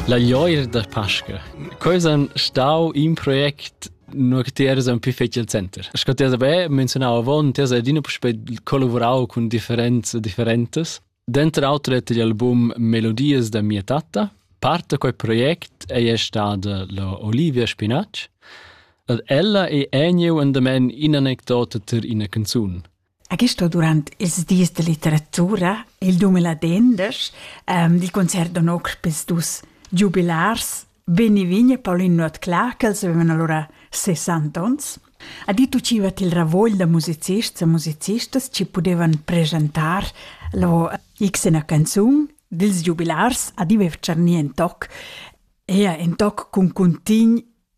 La glioir da Pasca. Quei san stau in project nur che ti eras un più fetg il center. Sco ti sabe, menzionavo avon, ti sei adina puspei collaborau cun differenze differentes. Dentro auto dette gli album Melodies da mia tatta. Parte quel project è stata la Olivia Spinacci. Ed ella è eniu endamen in anecdota ter ina canzun. A Gisto durant ils dis da litteratura è il dumel ad endesch ehm dil concert da notg pils dus giubilars Benny Vigne e Paulin Nuotclà, ch'els avevan allura sessanta onns, ha dit uciva til ravogl da musicists e musicistas chi pudevan presentar lò xena canzun dils giubilars ad Ive Tscharnien toc, ea in toc cun cuntign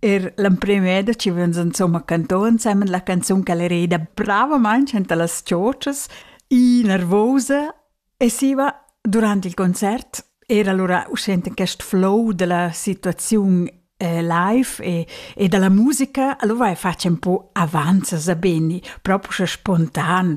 Er l'emprim eda chi vegn insumma cantò insemen la canzun ch'el reda bravamaing anta las chochas, innervosa e siva durant il concert era lura uschè enten quest flow della situaziun eh, live e, e dalla musica, allora vai fatg un po avanza, sa beni, proprio spontan.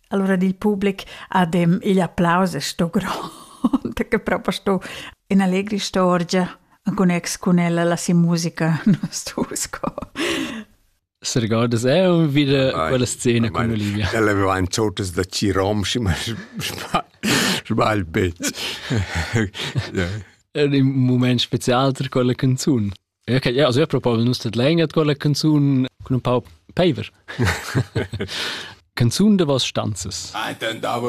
Allora il public ha dem igl applaus e sto grond, che proprio sto in allegri storgia con ex con ella la si musica non sto sco. Se ricordas è un wieder quella scena con Olivia. Ella aveva in totes da Cirom, ma sbagl bet. È un moment special per quella canzone. Ja, okay, ja, also ich probabel nus dat länger quella canzun con un pau paver. canzun de was stanzes. I don't know